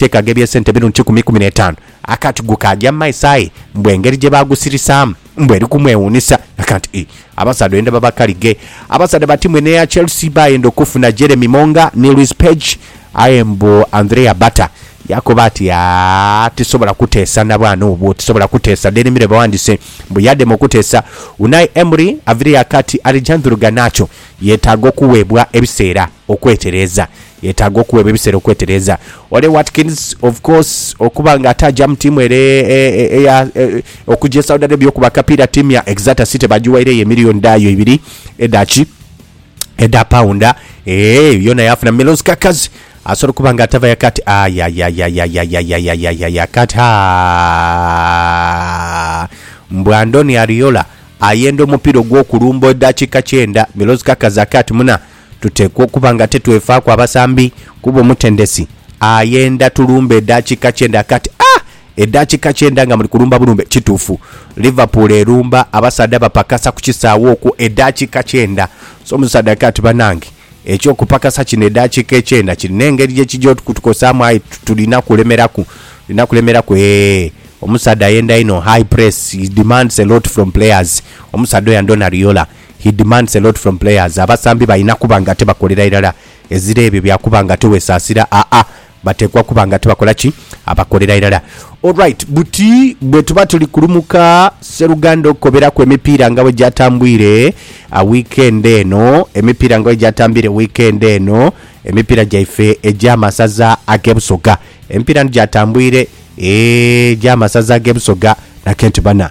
Teeka ghe eby'esente emirundi kikumi ikumi n'etaanu. Akati gu kaagya mu maiso aye mbu engeri gye baagusirisaamu mbu eri kumwewuunhisa. Akantu ii, abasaadha oyenda baba kalige. Abasaadha ba tiimu eno eya Chelsea baayenda okufuna Jeremy Monga ni Luis Page aye mbu Andrea Bata yaakoba ati, Aah, tisobola kuteesa na bwana obwo, tisobola kuteesa. Daily Mirror bawandiise mbu yaadema okuteesa. Unai Emery avireyo akati Alejandro Garnacho yeetaaga okuweebwa ebiseera. Okwetereeza. Yetaaga okuweebwa ebiseera okwetereeza. Ole Watkins, of course, okuba nga ataaja mu tiimu ere eya, okuja e Saudi Arabia okuba akapiira, ttiimu ya Exeter City baagiwairegho emiliyoni dhayo ibiri edha ki? Edha paunda. Eeh, yoona yaafuna. Milos Kerkez asobola okuba nga atavayo akati, Ayayayayayayayayayayayayay akati, Haa! Mbu Andoni Ariola ayenda omupiira ogw'okulumba edakiika kyenda. Milos Kerkez akati, Muna, Tuteekwa okuba nga tetwefaaku abasambi kuba omutendesi ayenda tulumbe edhakiika kyenda. Kati a edhakiika kyenda nga muli kulumba bulumbe? Kituufu Liverpool erumba abasaadha bapakasa ku kisaawe okwo edhakiika kyenda. So omusaadha aika ati, Banange eky'okupakasa kino edhakiika ekyenda kirina engeri gye kija okutukosaamu aye tulina kulemeraku, tulina kulemeraku. Eehh omusaadha ayenda inho, high press, he demands a lot from players, omusaadha oyo andhona Riola. He demands a lot from players, abasambi balina kuba nga ate bakolera irala ezira ebyo bya kuba nga ate wesaasira aa, bateekwa kuba nga ate bakola ki? Abakolera irala. Alright, buti bwetuba tuli kulumuka sseruganda okukoberaku emipiira nga bwegyatambwire wiikendi eno, emipiira nga bwegyatambiire wiikendi eno, emipiira gyaife egy'amasaza ag'e Busoga. Emipiira ni gyatambwire, eeh egy'amasaza ag'e Busoga, na kenti bana.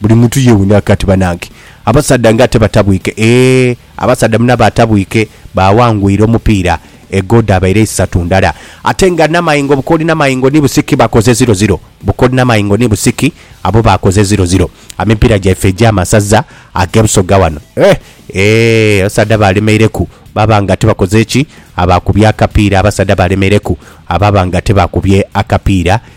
Buli muntu yewuuniraku ati banange abasaadha nga ate batabwike eeh abasaadha munabo atabwike bawangwire omupiira egoal dhabaire isatu ndala ate nga namayengo bukoli namayengo ni busiki bakoze ziro ziro bukoli namayengo ni busiki abo bakoze ziro ziro amipiira gyaife egya masaza age busoga wano eeh eeh abasaadha balemeireku baba nga ate bakoze ki abakubye akapiira abasaadha balemereku ababa nga ate bakubye akapiira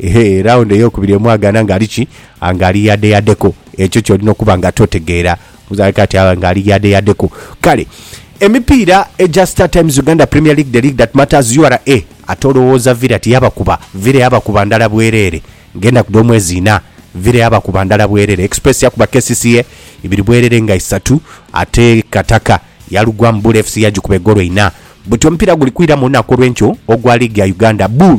Ehe, raawundi ey'okubiri emwagaana ng'ali ki? Ng'ali yadeyadeku. Ekyo ky'olina okuba nga totegeera. Omuzaana ali kaati aba ng'ali yadeyadeku. Kale, emipiira egya StarTimes Uganda Premier League, The League That Matters, ura, ate olowooza Villa tiyabakuba? Villa yabakuba ndala bwereere ng'enaku dh'omwezi inha. Villa yabakuba ndala bwereere. Express yakuba kcca ibiri bwereere nga isatu, ate Kataka yalugwamu Bull FC yagikuba egoolo inha. Buti omupiira guli kwira mu lunaku olw'enkyo ogwa liigi ya Uganda. Bull.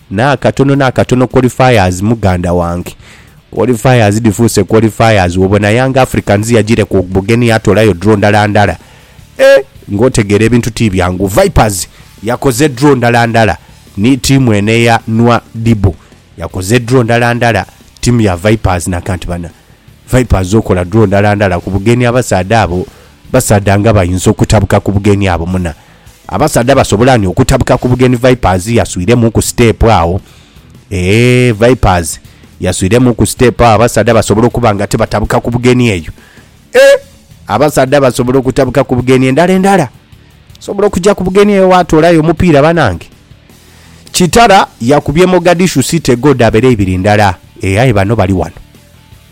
N'akatono n'akatono qualifiers muganda wange. Qualifiers dhifuuse qualifiers. Wobona Young Africans yajiire ku bugenhi yatoolayo draw ndala ndala. Eeh! Ng'otegeera ebintu ti byangu. Vipers yakoze draw ndala ndala ni ttiimu eno eya Nwadibu. Yakoze draw ndala ndala ttiimu ya Vipers naka nti bana Vipers okola draw ndala ndala ku bugenhi abasaadha abo, basaadha nga bayinza okutabuka ku bugenhi abo muna. Abasaadha basobola ni okutabuka ku bugeni Vipers yaswiremu ku siteepu agho. Eeh Vipers yaswiremu ku siteepu agho abasaadha basobola okuba nga tibatabuka ku bugeni eyo. Eeh abasaadha basobola okutabuka ku bugeni endala endala. Osobola okuja ku bugeni eyo waatoolayo omupiira banange. Kitara yakubye Mogadishu City goodabere ibiri ndala. Eeh aye bano bali wano.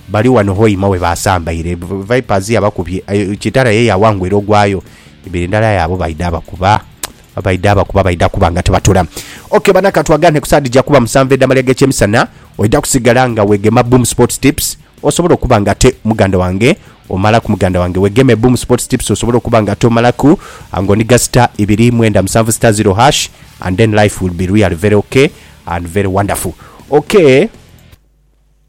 Bali wano Hoima we baasambaire. Vipers yabakubye. Kitara ye yaawangwa era ogwayo ibiri ndala aye abo baidha abakuba. Baidha abakuba baidha kuba nga tibatula. Ok bana ka twaganhe ku saa dhija kuba musanvu edh'amalya g'ekyemisana oidha kusigala nga weegema Boom Sports Tips osobole okuba nga ate muganda wange omalaku muganda wange. Weegeme Boom Sports Tips osobole okuba nga ate omalaku ng'oniga star ibiri mwenda musanvu star zero hash and then life will be really very ok and very wonderful. Ok.